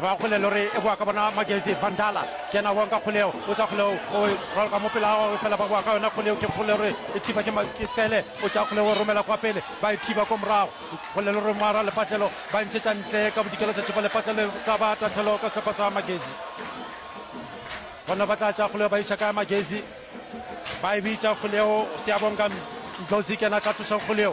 Ba kgole le gore e boa ka bona magezi van dala ke yena wonka kgoleo o tša kgoleo o rwala ka mopela wa o fela ba boa ka yona kgoleo ke kgole gore e thiba ke ke tsele o tša kgoleo o romela kwa pele ba e thiba ko morago kgole le gore moara lepatlelo ba ntšhetša ntle ka bodikelo tša tšhepa lepatlelo tla ba tatlhelo ka sepa sa magezi gona ba tla tša kgoleo ba iša ka magezi ba e bitša kgoleo se ya bonka ndlozi ke yena tla tloša kgoleo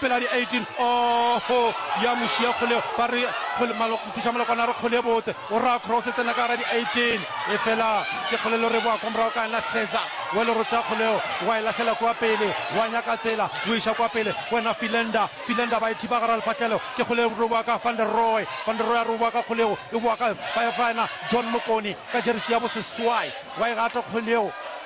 Pela di 18 oohoo ya mo šiya kgole ba re kgole malo nthiša malokwana re kgole botse o ra cross e tsena ka gara di 18 e fela ke kgole lo re boa kwa morago ka na hleza wa le rotša kgoleo wa e lahlela kwa pele wa nyaka tsela o iša kwa pele wena filenda filenda ba e thiba gara lefatlelo ke kgole re boa ka van der roy van der roy a re boa ka kgoleo e boa ka fa fa na john mokoni ka jerisi ya boseswai wa e gata kgoleo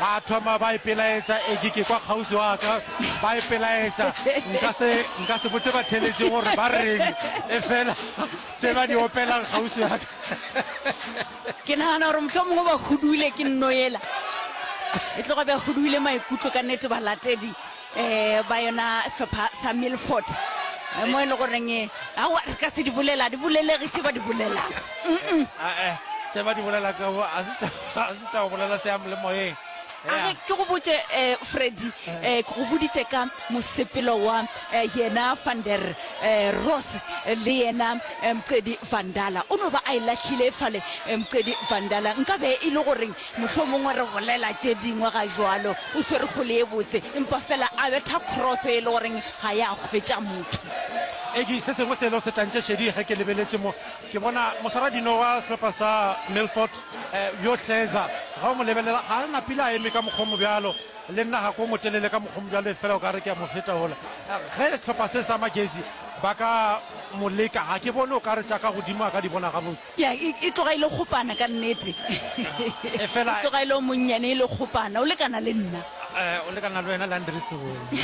ba thoma ba ipelaetša eke ke kwa kgauswi wa ka ba ipelaetša nka se nka se botse batheletše gore ba reng e fela tše ba di opelang kgauswi wa ka ke nagana gore motlho mongwe ba huduile ke nnoela e tloga bja huduile maikutlo ka nete balatedi um ba yona sehlopha sa milford mo e le goreng awa re ka se di bolela di bolelege tše ba di bolelago ae tše ba di bolela ka bo a se tša go bolela se yam le moyeng age ke go botse um freddy um ke go boditše ka mosepelo wa um yena vander um ross le yena um mqedi vandala o no ba a e lahlile fale um mqedi vandala nka be e le goreng Mohlomongwe re bolela tše dingwe ga jwalo, o swere kgole ye botse, empa feela a betha cross e le goreng ga ya hwetša motho. Eggie, se sengwe selo se tlantše šedi ge ke lebeletše mo, ke bona moswaradino wa sehlopha sa Milford, yo Hleza, ge o mo lebelela ga a na pila a eme ka mokgwa o mo bjalo, le nna ga ke o motelele ka mokgwa o mo bjalo efela o ka re ke a mo feta wola. Ge sehlopha se sa Magezi ba ka mo leka, ga ke bone o ka re tša ka godimo a ka di bona gabotse. Ya, e, e tloga e le kgopana ka nnete. Efela- E tloga e le o monnyane, e le kgopana. O lekana le nna. Eh, o lekana le wena, Landry Seboni.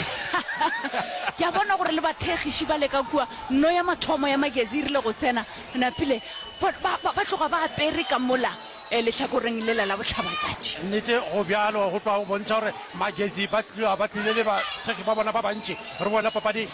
Ke a bona gore le bathegiši ba le ka kua, no ya mathomo ya magezi e rile go tsena, napile ba, ba, ba, ba tloga ba apere ka mola eh, lehlakoreng lela la bohlabatšatši. Nnete, go bjalo, go tloga go bontšha gore magezi ba tlo, ba tlile le bathekgi ba bona ba bantši. Re bone papadi.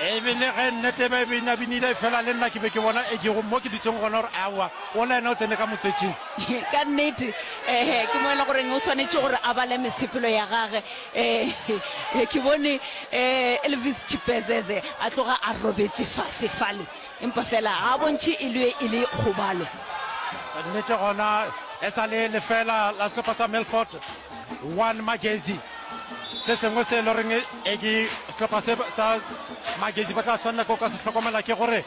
ebile ge nnete ba e binabinile fela le nna ke be ke bona e ke mo ke ditseng gona gore aowa o le ena o tsene ka motsetsing ka nnete ee ke mo e le goreng o tshwanetse gore a bale mesepelo ya gage ee ke bone um elvis chipezeze a tloga a robetse fase fale empa fela ga a bontšhe e le e le kgobalo nnete gona e sa le lefela la sehlopha sa melfort One Magezi se sengwe se e le goreng e ke sehlopha se sa Magezi ba tla tshwanela ko ka se tlhokomela ke gore